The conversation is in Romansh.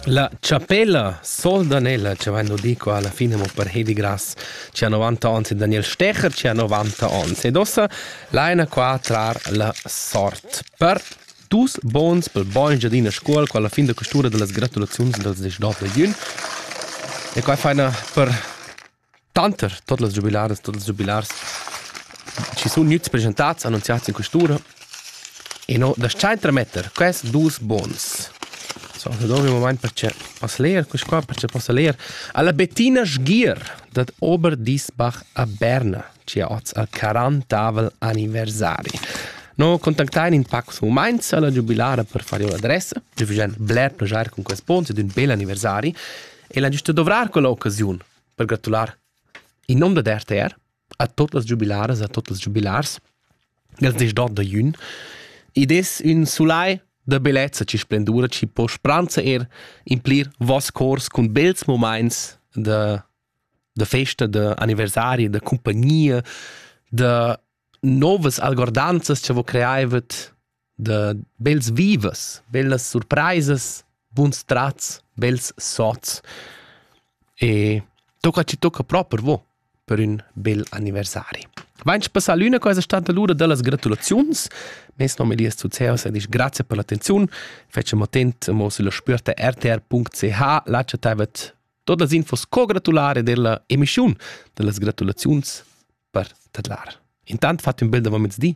La chapella Soldanella, che vain nu di qua alla fine mo per Hedi Grass, che ha 90 ans e Daniel Stecher che ha 90 ans. Ed ossa laina qua trar la sort per dus bons pel bogn giadina scuol qua alla fin da questura dellas gratulaziuns dals 19 da jun. E qua faina per Tanter tuot las giubilaras, tuot ils giubilars chi sun gnüts preschentats, annunziats in quest'ura, e no das-cha intermetter quest duos buns. So, nu dovri mumaint perche poss leer quist qua, perche possa leer alla Bettina Sgier dad Oberdiesbach a Berna, chi ha hoz al quarantavel anniversari. No contactain in pacos mumaints alla giubilara per far io l'adressa, giüvgend bler plaschair cun quest buns ed ün bel anniversari. El ha gista dovrar quella occasiun per gratular in nom dad RTR a tot las giubilaras a tot els giubilars els dis d'ot da jün id es ün sulai da bellezza chi splendura chi po spranza er implir vos cors cun bels momaints da da festa da anniversari da cumpagnia da novas algordanzas cha vo creaivet da bels vivas, bellas surpraisas, buns trats, bels sots. E tocca ci tocca proper vo per ün bel anniversari. Vains passà l'üna cosa stanta lura da las gratulaziuns. Mes nom è Elias Zuzeus ed ich grazie per l'attenziun. Facem attent mo sulla spürta rtr.ch, lacciataivet tot las infos co gratulare della emischiun, da las gratulaziuns per tadlar. Intant fat ün bel davant mezdi